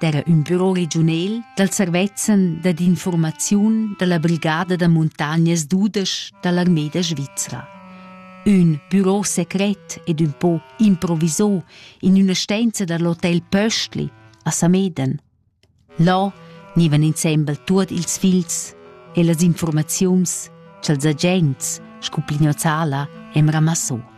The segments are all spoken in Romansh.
d'era ün büro regiunel dal servezzan dad infurmaziun da la brigada da muntagnas dudesch da l'armeda svizra. Ün büro secret ed ün po improvisò in üna stenza da l'hotel Pöstli a Sameden. Là gnivan insembel tuot ils figls e las informaziuns cha'ls agents scu Plignozzala e'm ramassò.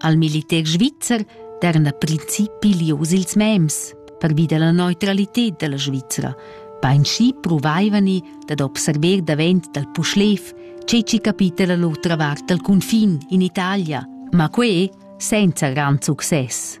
Al militer svizzer daran a principi lius ils mems pervi della neutralität della Svizzera. Beinschi provaivani dad observer davent dal Puschlev ce ci capita la l'otra vart dal confin in Italia, ma que senza gran success.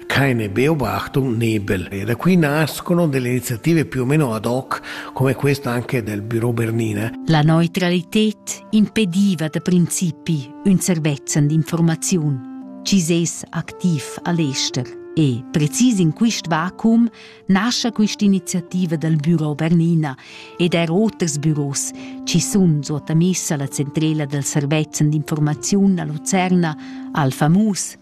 Quai n'è beobato nebel e da qui nascono delle iniziative più o meno ad hoc, come questa anche del Büro Bernina. La neutralität impediva da principi un servezzan d'informaziun. Ci ses activ a l'ester e precis in quist vacuum nasce quest'iniziativa dal Büro Bernina ed er oters büros ci sun sottamessa la centrela dal servezzan d'informaziun a Lucerna al famus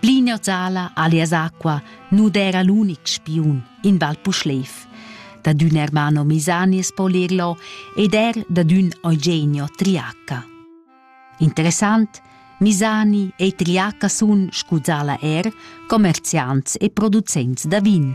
Pli neuzala alias acqua nu d'eira l'unic spiun in Val Puschlev. Dad ün Ermano Misani es po lerlo ed eir dad ün Eugenio Triacca. Interessant, Misani e Triacca sun, scuzala er, commerziants e producents da vin.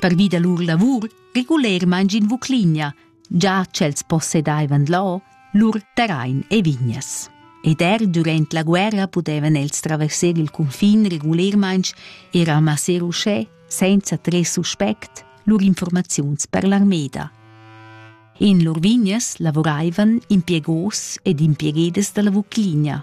Pervi da lur lavur regulermaing in Vucligna, già ch'els possedaivan là lur terrain e vignas. Ed er durant la guerra pudevan els traversar il cunfin regulermaing e ramasser uschè, senza tres suspect, lur informaziuns per l'armeda. In lur vignas lavoraivan impiegos ed impiegedas dalla Vucligna,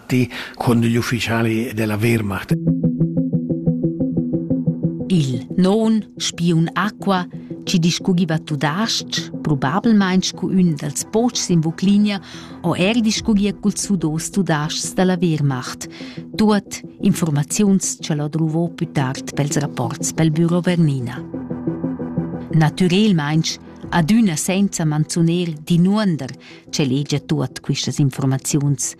fatti con gli ufficiali della Wehrmacht. Il non spiun acqua ci discugiva tudasc, probabilmein scu ün dals pochs in Vuclinia, o er discugia cul sudos tudascs dalla Wehrmacht, tuot informaziuns ce l'ho druvo più tard pels rapports pel Büro Vernina. Natürelmeins adüna senza manzuner dinuonder ce legia tuot quistas informaziuns,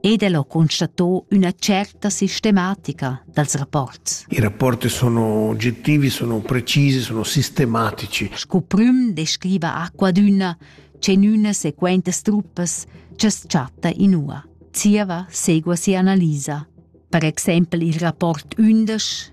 ed el ho constato üna certa sistematica dals rapports. I rapporti sono oggettivi, sono precisi, sono sistematici. Sco prüm descriva Aquadüna cenüna sequentas truppas cha's chatta inua. Zieva segua sia analisa. Per exempel il rapport 11